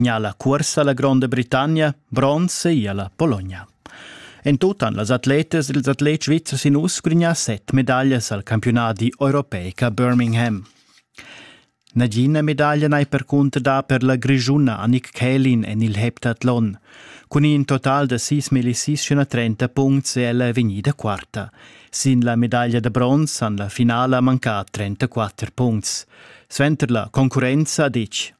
gnà la cuorsa la Gronda Britannia, bronze e la Pologna. En tut han las atletas ed ils atlets svizzers in uss grignà set medaglias al campiunadi europeic a Birmingham. Nagina medaglia n'hai percunter dà per la grischuna Annik Kählin en il heptathlon. Cun in total da 6.630 puncts è ella vegnida quarta. Sin la medaglia da bronz han la finala mancà 34 puncts. Suenter la concurrenza ha ditg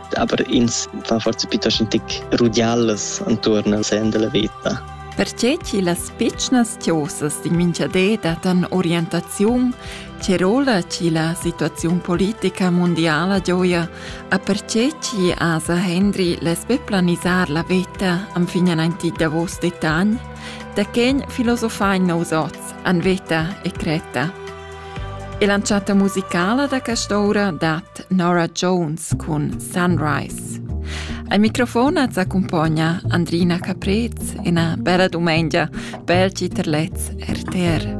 Aber ins fa forse piuttosto un tic rudialas intorno al sen della vita. Perche chi las pitschnas tiosas di minchadé datan orientaziun, che rola chi la situaziun politica mondiala gioia, a perché chi asa Henry lesbe planisar la veta am fignan anti davos detagn, da chen filosofain nous oz an veta e creta. E l'entschatta musicala da quest'ora dat Nora Jones cun Sunrise. Al microfon az accumpogna Andrina Caprez e una bella dumengia pel Citerlez RTR.